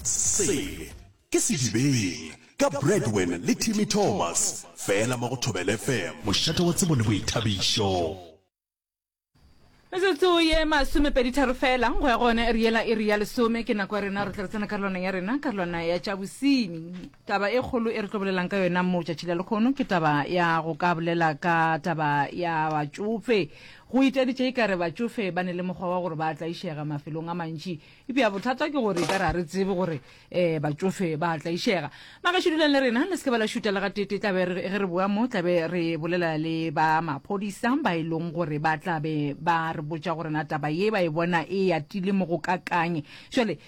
Sele ke Sedibeng ka Bradwen le Timmy Thomas fela mo go Thobela FM. Mošate wa tsebo le boithabišo. Metsotso ye masomepeditharo fela go ya go yone ere yela iri ya lesome ke nako ya rena re tla re tsena karolwana ya rena karolwana ya tša bosenyi taba e kgolo e re tlo bolelang ka yona mo tšatši la lekgono ke taba ya go ka bolela ka taba ya batšofe Go itaditše e ka re batšofe ba ne le mokgwa wa gore ba a tlaišega mafelong a mantši. Eupša bothata ke gore e ka re ga re tsebe gore batšofe ba a tlaišega. Magaešo, dulang le rena, le se ke ba la šuta le gatee-tee. Tla be ge re boa mo, tla be re bolela le ba maphodisa ba e lego gore ba tla be ba re botša gore na taba ye ba e bona e atile mo go kakaang. Bjale,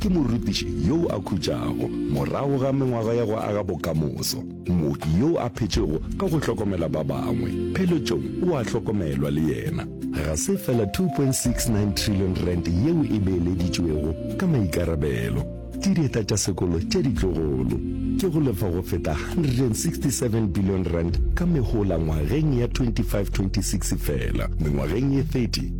Ke morutiši yoo a khutšago morago ga mengwaga ya go aga bokamoso, mooki yoo a phetšego ka go hlokomela ba bangwe. Pheletšong o a hlokomelwa le yena. Ga se fela R2.69 trillion yeo e beeleditšwego ka maikarabelo ke dieta tša sekolo tše ditlogolo, ke go lefa go feta R167 billion ka mehola ngwageng ya 2526 fela, mengwageng ye 30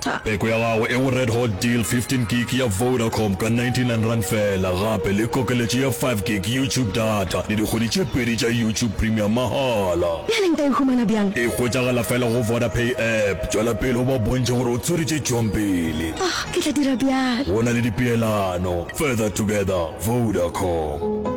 Tha. Peko ya gago e go Red Hot Deal 15 gig ya Vodacom ka 99 rand fela gape le kokeletšo ya 5 gig YouTube data le dikgwedi tše pedi tša YouTube Premium mahala. Bjale nka e humana bjang? E hwetšagala fela go Vodapay app. Tšwela pele o ba bontšhe gore o tswere tše tšwang pele. Oh, ke tla dira bjalo. Go na le dipeelano. Further together. Vodacom.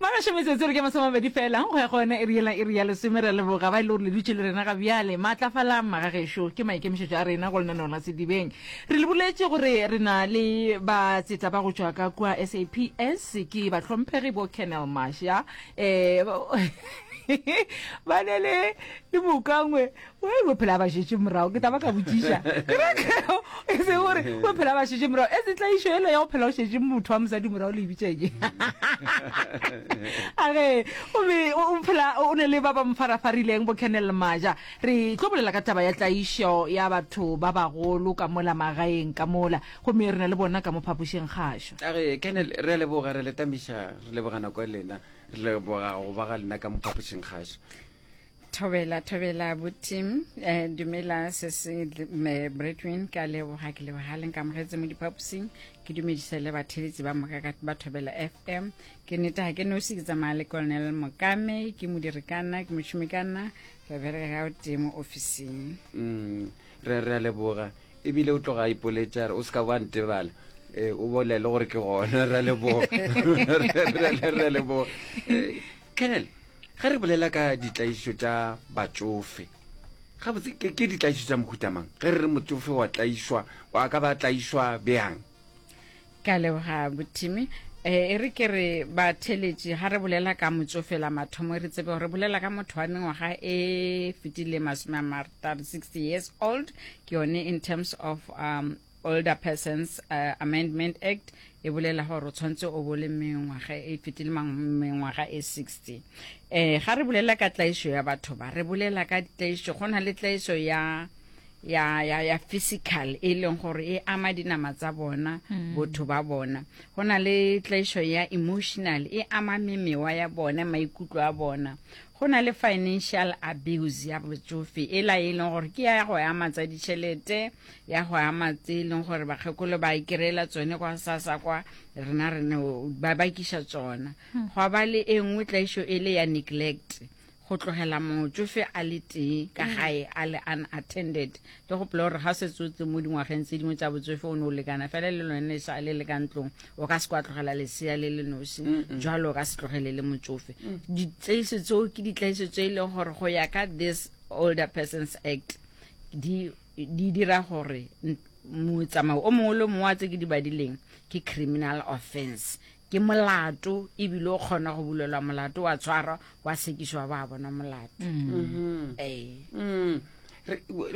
Ba gašo metsotso re ke masomabedi fela go ya go yona e riela e re ya lesome re leboga ba e le gore le dutše le rena ga bjale maatlafalang maga gešo ke maikemišetšo a rena go lenaneo la sedibeng re le boletše gore re na le ba tseta ba go tšwa ka kua saps ke batlhomphegi bo kennel masha um ba ne le le mokangwe we we phela ba šetše morago ke taba ka botšiša kerekeo e se gore we phela ba šetše morago e se tlaišo ele ya go phela o šetše motho wa mosadi morago le ebitšenye age obe o phela o ne le ba ba mofarafarileng bo canel maja re tlo bolela ka taba ya tlaišo ya batho ba bagolo ka mola magaeng ka mola gomme re na le bona ka mo phapošeng gašo age canel re a leboga re letamiša re leboga nako e lena re leboga go ba ga lena ka mo phapošeng gašo thobela thobela buti um eh, dumela se se eh, bretwin ka leboga ke leboga leng ka mogetse mo diphaposing ke dumedisa le batheletsi ba moka ka ba thobela fm ke nete ga ke nosi ke tsamaya le colonel mokame ke modirikana ke mošomikana re bereka ga o tee mo officing mm, re re a leboga ebile o tloga a ipoletša o se ka ba ntebala eh, o bolele gore ke gona re a leboga re a leboga Eh, colonel Ge re bolela ka ditlaišo tša batšofe, gabotse ke, ke ditlaišo tša mohuta mang? Ge re re motsofe wa tlaišwa, o a ka ba tlaišwa bjang? Ke a leboga Bothimi. E, e re ke re batheletši ga re bolela ka motsofe la mathomo re tsebe gore re bolela ka motho wa mengwaga e fetile masome a martaro 60 years old ke yone in terms of um, Older Persons uh, Amendment Act e bolela gore o tshwanetse o bo le mengwaga e fetile mengwaga e 60 eh ga re bolela ka tlaišo ya batho ba re bolela ka tlaišo go na le tlaišo ya ya ya ya physical e leng gore e ama dinama tsa bona mm. botho ba bona go na le tlaišo ya emotional e ama memewa ya bona maikutlo a bona go na le financial abuse ya botsofe e la e leng gore ke ya go ama tsa ditšhelete ya go ama tse e leng gore bakgekolo ba e kry-ela tsone kwa sasa kwa rena rene ba bakiša tsona hmm. gwa ba le e nngwe tlaišo e le ya neglect go tlogela motsofe a le tee ka mm. gae a le unattended ke gopola gore ga setse o tle mo dingwageng tse dingwe tsa botsofe o ne o lekana fela le lone sa le le ka ntlong o ka se kwa tlogela lesea le le nosi jalo o ka se tlogele le motsofe mm. ditlaiso tseo ke ditlaiso tse e leng gore go ya ka this older persons act di di dira gore motsamao o mongwe le o mongwe wa tse ke di badileng ke criminal offense, ke molato e bile o kgona go bulelwa molato wa tshwarwa wa sekišwa ba bona molato. Mm-hmm. Ee. Mm.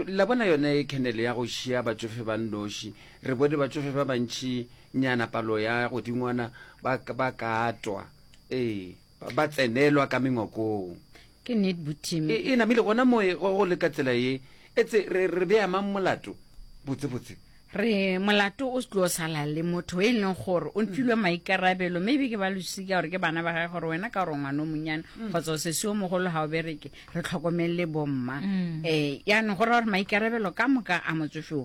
la bona yone khenele ya go šia batsofe ba nnoši re bone batsofe ba bantši nyana palo ya godingwana ba katwa ee ba tsenelwa ka mengwakong. Ke nnet bo Tim. E, e namile gona moe go, go le ka tsela ye. Etse re, re bea mang molato? Botse, botse. Re, molato o se tlo sala le motho e leng gore o ntfilwe maikarabelo, maybe ke ba losika gore ke bana ba gae gore wena ka gore ngwana o monyane mm. kgotsa o sese o mogolo ga o bereke re tlhokomelele bomma. Mm. Eh, yaanong go ra gore maikarabelo ka moka a motsofeo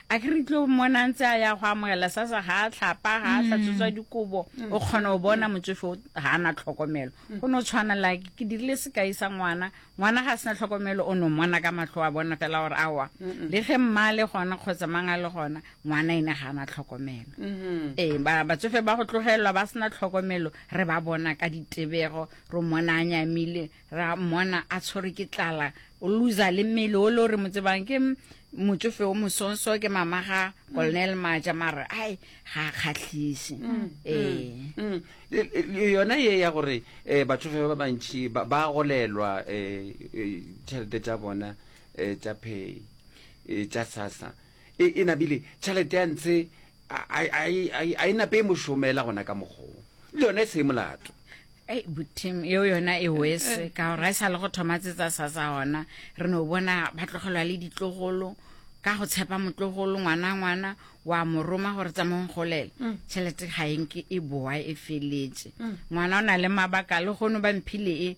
A ke re tlo mmona a ntse a ya go amogela sa sa ga a tlhapa ga a tlatsotswa dikobo o kgona go bona motsofe o ga a na tlhokomelo go ne o tshwana la ke ke dirile sekai sa ngwana ngwana ga a sena tlhokomelo o ne o mmona ka matlho a bona fela gore awa le ge mma le gona kgotsa mang a le gona ngwana ene ga a na tlhokomelo ee ba- batsofe ba go tlogelelwa ba sena tlhokomelo re ba bona ka ditebego re mmona a nyamile ra mmona a tshwere ke tlala o loser le mmele o le o re mo tsebang ke motsofe o mosonso ke mama ga colonel maja mare ai ga a kgatlhise ee Mm. Le- le- le yona ye ya gore um batsofe ba bantšhi ba ba golelwa um tšhelete tša bona um tša pay um tša sasa E, e nabile tšhalete ya ntshe a e nape e mo šomela gona ka mokgong le yona e se e molato ei butim yeo yona e wese eh, eh. ka gore a e sa le go thoma tsetsa sa sa gona re no bona ba tlogelwa le ditlogolo ka go tshepa motlogolo ngwana ngwana wa mo roma gore tsamong golele mm. tšhelete ga enke e boa e feletse mm. ngwana o na le mabaka le gono ba mphile e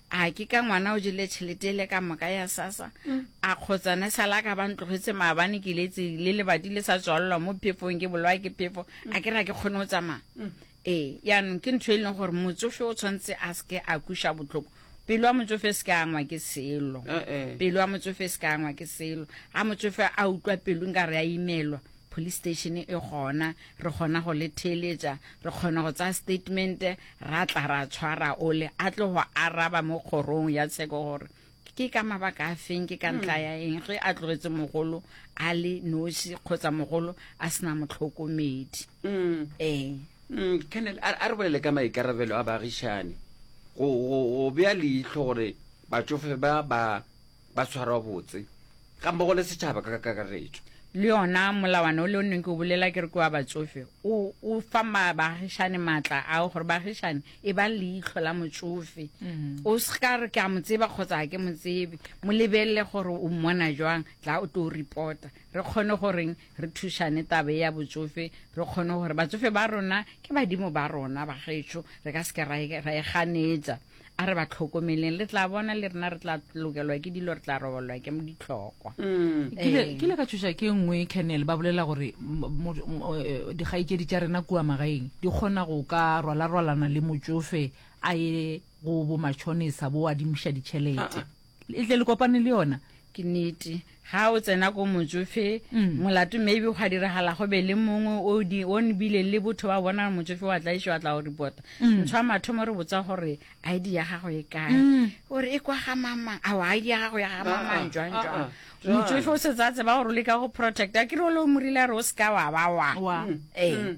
A ke ka ngwana o jele tšhelete ele ka moka ya sasa? A kgotsane sa la ka ba ntlogetse maabane ke letse le lebati le sa tswalelwa mo phefong ke bolwa ke phefo a ke ra ke kgone go tsamaya ee yaanong ke ntho e leng gore motsofe o tshwanetse a seke a kuša botlhoko pelo ya motsofe e seke angwa ke selo pelo ya motsofe e seke angwa ke selo ga motsofe a utlwa pelo nka re a imelwa Police station e gona, re kgona go le theeletša, re kgona go tsaya statement, ra tla ra tshwara ole, a tlo go araba mo kgorong ya tsheko gore ke ka mabaka a feng ke ka hmm. ntla ya eng ge a tlogetse mogolo a le noši kgotsa mogolo a sena motlhokomedi hmm. ee hmm, kennel a re bolele ka maikarabelo a baagišane go bea leitlho gore batsofe ba ba ba tshwarwa botse ga mmogo le setšhaba ka kakaretšo le yona molawana o le o neng ke o bolela ke re ke wa batsofe o fa baagišane maatla ao gore baagišane e ba leitlho la motsofe mm-hmm. o se ka re ke a mo tseba kgotsa ga ke mo tsebe mo lebelele gore o mmona jwang tla o tlo reporta re kgone goreng re thušane tabe ya botsofe re kgone gore batsofe ba rona ke badimo ba rona bagetšho re ka se ke ra e ganetsa A re ba tlhokomeleng, le tla bona le rena re tla lokelwa ke dilo, re tla robalelwa ke ditlhokwa. Mm. Ke ile- ke ile ka tšhoša ke nngwe Colonel ba bolela gore mo- mo- mo- eh, dikgaetšedi tša rena kua magaeng di kgona go ka rwalarwalana le motšofe a ye go bomatšhonisa bo adimiša ditšhelete. Le tle le kopane le yona. Ke nete. Ha o tsena ko motšofe, mm. molato maybe gwa diragala go be le mongwe o di o nbile le botho ba bona motšofe wa tla išo a tla go repota. Mm. Ntshwa mathomo re botsa gore ID ya gago e kae. Mm. O re e kwa ga mama. A wa ID ya gago ya ga mama ah, ah, jwang ah, jwang. Motšofe o se tsa tseba gore o leka go protecta. Ke re o le o morile re o se ka wa ba wa. Wa. Mm. Eh. Mm.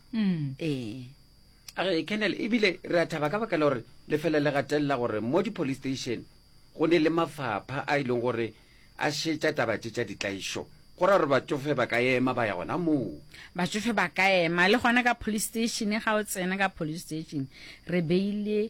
mm. ee age kennel ebile re a thaba ka baka la gore lefele le gatelela gore mo di-police station go ne le mafapha a e leng gore a šetša taba tše tša ditlaišo go ra gore batsofe ba ka ema ba ya gona moo batsofe ba ka ema le gona ka police station ga o tsena ka police station re beile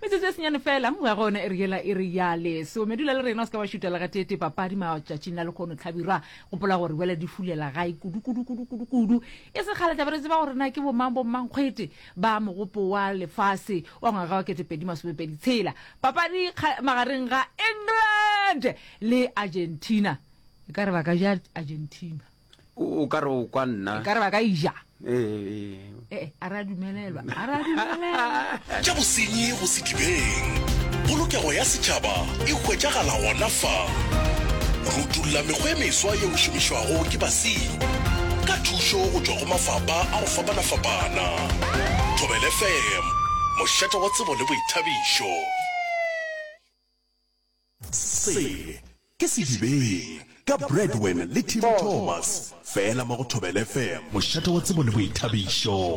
Metsotso e senyane fela, nngwe ya gona e re yela e re ya leso. Medula le rena o se ka wa šutela ga tete papadi matšatšing a lekgono Tlhabirwa. Gopola gore wela di fulela gae kudu kudu kudu kudu kudu. E se kgale tla be re tseba gore na ke bomang bommankgwete ba mogopo wa lefase wa ngwaga wa kete pedi masomepedi tshela. Papadi kga, magareng ga England le Argentina. E ka re ba ka ja Argentina. o ka re o kwa nna ka re ba ka ija ee a re a dumelelwa a re a dumelelwa tša bosenyi go sedibeng polokego ya setšhaba e hwetšagala gona fa go utulla mekgwa e meswa ye o šomišwago ke basenyi ka thušo go tšwa go mafapa a go fapana-fapana thobele fm mošate wa tsebo le boithabišo Se ke Sedibeng ka Bradwen le Tim Thomas, fela mo go Thobela FM. Mošate wa tsebo le boithabišo.